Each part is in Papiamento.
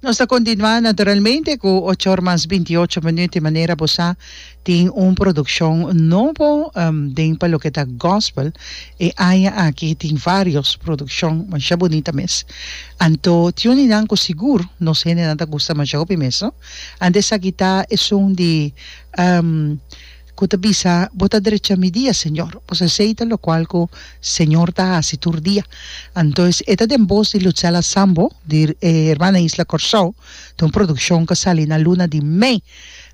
Nos ta continua naturalmente cu ocho or mas bintiyocho minuut di manera bo sa tin un produccion nobo den pa loke ta gospel e aña aki tin varios produccion masha bunita mes anto tin un di nan cu sigur nos hendenan ta gusta masha hopi mes no anto esaki ta esun di ku ta bisa, Bo ta drecha mi dia, Señor. Bo sa esei ta lokual ku Señor ta hasi tur dia. Anto es e ta den bos di Lutzella Sambo, di Hermana Isla Kòrsou, ta un produkshon ku sali na luna di mei.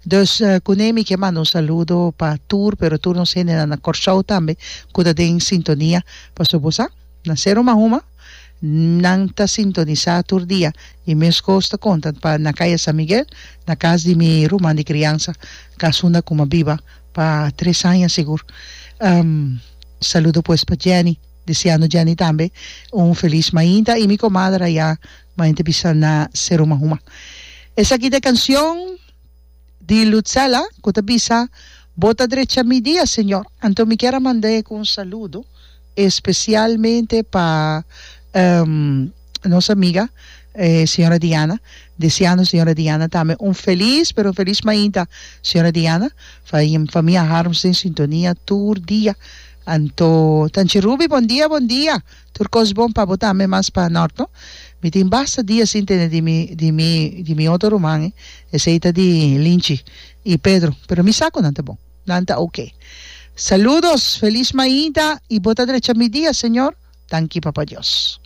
Dus kuné mi ke manda un saludo pa tur, pero tur nos hendenan na Kòrsou tambe ku ta den sintonia. Pastor, bo sa, na Sero Mahuma. Nan ta sintonisá tur dia e meskos ta konta pa na Kaya San Miguel, na kas di mi ruman di kriansa, kas unda ku mi a biba pa tres aña sigur. Saludo pues pa Jenny, deseando Jenny tambe un felis mainta i mi komader ayá mainta bisa na Seruma Huma. Esaki ta e kansion. di Lutzela cu ta bisa, Bo ta drecha mi dia, Señor. Anto mi kier a manda e cu un saludo especialmente pa nos amiga, e Sra. Diana. Deseando Sra. Diana tambe un feliz, pero un feliz mainta, Sra. Diana. Famia Harms den sintonia tur dia. Anto Tanchi Ruby, bon dia, bon dia. Tur cos bon pa bo tambe mas pa Norton. Mi tin basta dia sin tene di mi di mi di mi otro ruman e, esey ta di Linchi y Pedro, pero mi sa cu nan ta bon, nan ta ok. Saludos, feliz maida y bo ta drecha mi dia Señor, danki Papa Dios.